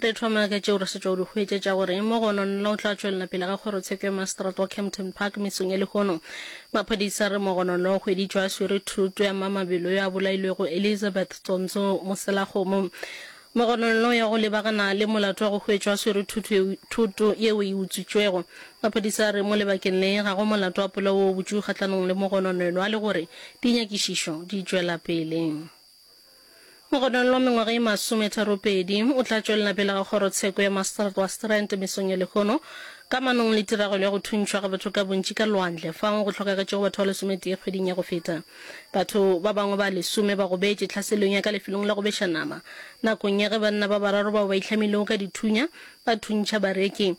Re thoma ka tšeo re sa tšwa di hwetšetša gore mo go ona nla o tla tšwelela pele ga kgorotsheko ya maseterata wa Kempton Park mesong ya lehono. Maphodisa a re mo go ona nla o hweditšwe a swere thoto ya mma mabelo yo a bolailwego Elizabeth Tsonzo Moselakgomo. Mo go ona nla o ya go lebagana le molato wa go hwetšwa a swere thoto yeo e utswitšwego. Maphodisa a re mo lebakeng le ga go molato wa polao wo botšwi kgahlanong le mo go ona nla a le gore dinyakišišo di tšwela pele. Mogononlo wa mengwaga ye masometharopedi o tla tšwelela pele ga kgorotsheko ya Maastricht wa Strand mesong ya lehono ka manong le tiragalo ya go thuntšhwa ga batho ka bontši ka lwandle fao go hlokagetšego batho ba lesometee kgweding ya go feta. Batho ba bangwe ba lesome ba gobetše tlhaselong ya ka lefelong la go beša nama nakong ya ge banna ba bararo bao ba itlhamilego ka dithunya ba thuntšha bareki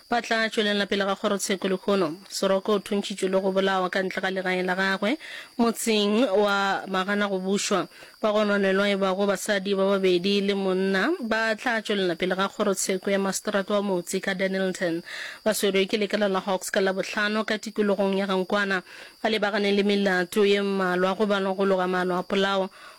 Ba tla tšwelela pele ga kgorotsheko lehono. Soroko o thuntšitšwe le go bolawa ka ntle ga legae la gagwe motseng wa Magana go bušwa. Ba gononelwa e bago basadi ba babedi le monna ba tla tšwelela pele ga kgorotsheko ya maseterata wa motse ka Dennilton. Ba swerwe ke lekala la Hawks ka Labohlano ka tikologong ya Gankwana. Ba lebagane le melato ye mmalwa, go balwa go loga maano a polao,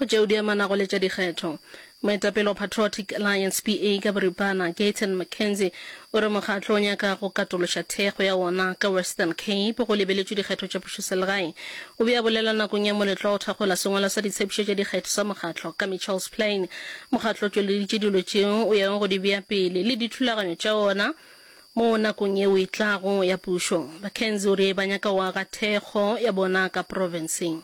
go tšeo di amanago le tša dikgetho moetapele wa patriotic alliance pa ka boripana gayton mckenzie o re mokgatlo o nyaka go katološa thekgo ya wona ka western cape go lebeletšwe dikgetho tša pušoselegae o be a bolela nakong ya moletlo wa go thakgola sengwalo sa ditshepšo tša dikgetho sa mokgatlo ka mitchells plain Mokgatlo o tšweleditše dilo tšeo o yago go di bea pele le dithulaganyo tša wona mo nakong yeo e tlago ya pušo. Mackenzie o rile ba nyaka go aga thekgo ya bona ka profenseng.